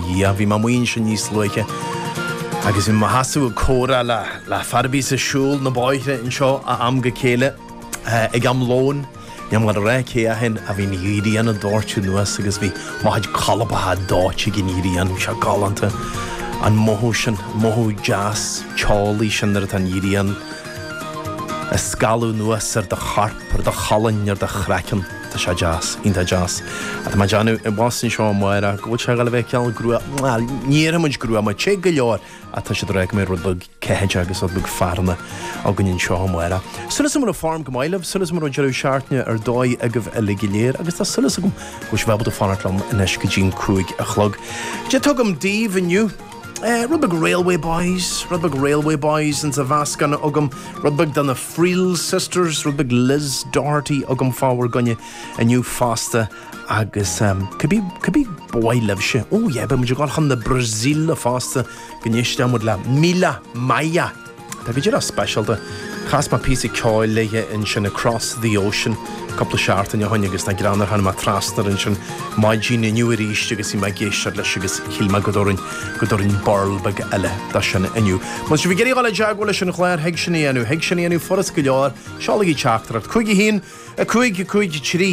dhiaidh. Bhí mé amuigh ansin níos luaithe agus bhí mé i mo sheasamh ag comhrá le, le fear a bíos ag siúl na bóithre anseo ó am go chéile ag am lóin. Bhí muid ag rá cé chomh te a bhí an ghrian ag doirteadh anuas agus bhí mo chuid colpacha dóite ag an ghrian. Sea, galánta an mothú sin, mothú deas teolaí sin nuair atá an ghrian ag scaladh anuas ar do chorp, ar do cholainn, ar do chraiceann. Tá sé deas, iontach deas. Tá mé ag déanamh abhus anseo amárach go bhfuil sé ag gabháil a bheith cineál gruama, bhuel ní déarfaidh muid gruama, te go leor ach tá siad ag rá go mbeidh rud beag ceathaideach agus rud beag fearthainne againn anseo amárach. Súil agam go raibh form go maith libh, súil agam go raibh deireadh seachtaine ar dóigh agaibh uilig go léir agus tá súil agam go bhfuil sibh ábalta fanacht liom anois go dtí'n cúig a chlog. Caidé atá agam daoibh inniu? Rud beag Railway Boys, rud beag Railway Boys ins an mheascán agam, rud beag de na Friel Sisters, rud beag Liz Doherty agam fá bhur gcoinne inniu fosta agus cibé, cibé ba mhaith libhse, oh yeah, beidh muid ag dul chun na Brasaíle fosta go n-éistfidh muid le Mila Maia. Tá go díreach speisialta. Chas mé píosa ceoil léithe ansin, Across The Ocean, cúpla seachtain ó shin agus tá greannmhar, tháinig mé trasna air ansin maidin inniu arís agus bhí mé ag éisteacht leis agus shíl mé go dtabharfainn go dtabharfainn burl beag eile do sin inniu. Má tá sibh ag iarraidh dul i dteagmháil leis an chlár thig sin a dhéanamh, thig sin a dhéanamh furast go leor, seolaigí teachtaireacht 5, 1, 5, 5, 3.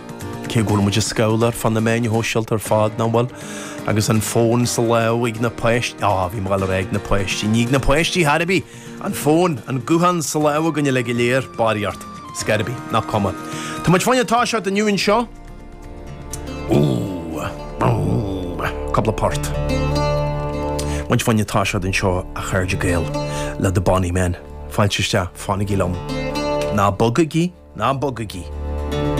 Cé go bhfuil muid ag scrolláil ar fud na meáin shóisialta ar fad, nach bhfuil? Agus an fón sa lámh ag na páistí, á, bhí mé ag gabháil a rá ag na páistí, ní ag na páistí chor ar bith! An fón, an guthán sa lámh againn uilig go léir, dáiríre. Ach scor ar bith, nach cuma. Tá muid fá choinne toiseacht inniu anseo. Úúú, búúú, cúpla port. Muid fá choinne toiseacht anseo, a chairde Gael, le The Bonny Men. Fáilte isteach, fanaigí liom. Ná bogaigí, ná bogaigí.